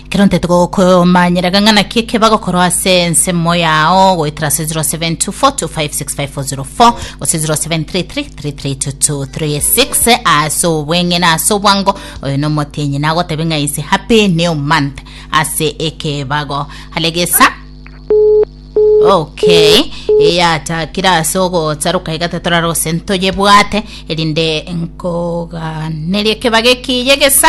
Kero ntaete gokomanyera iga ng'a naki eke bagokorwa ase ensemo yao goetera ase 0724255404 gose 0733332336 ase obweng'ene ase obwango oyo nomotienyi nagotebe ng'a is happy new month ase ekebago halegesa okay eyatakire ase ogosaruka iga tatorara gose ntoyebwate erinde nkoganerie ekebago ekiye gesa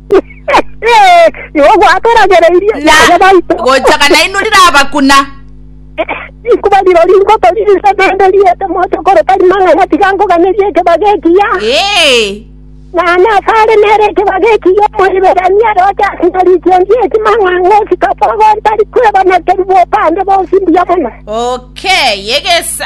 Igo gwatoragereirie na abana baito. gochaka nainwe rirabakuna Rikuba riro ringotoria inse naende riete moche koreka rimang'ana tiga ngoganerie ekebaga ekiya. Ee, Nane asare nere ekebaga ekiya Omoiberania aroche ase ng'ari chionsi ekimang'ang'a osikapo gontari kweba na keru bopande bonsi mbuya mono. okay yegesa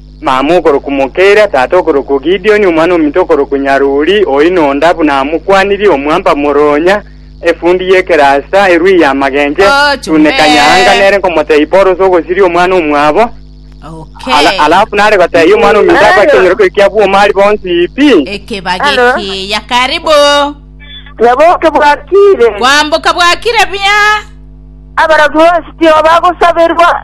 Mama okorokwa Mokeira, tata okorokwa Gideoni, omwana ominto okorokwa Nyaruri, oyio nonda buna amokwanirie, omwamba moronya, efundi y'ekerasa, erui y'amagenche, sune kanyaanga, nere nkomoteebia Paulosi ogosiria omwana omwabo. Ala, alafu nare goteebia omwana ominto akore ekenyorokio ekia bw'omari bonsi pi. Ekebage Hello. ekiya karibu Naboke bwakire. kwamboka bwakire buya Abarabwo bonsi tigo bagosaberwa.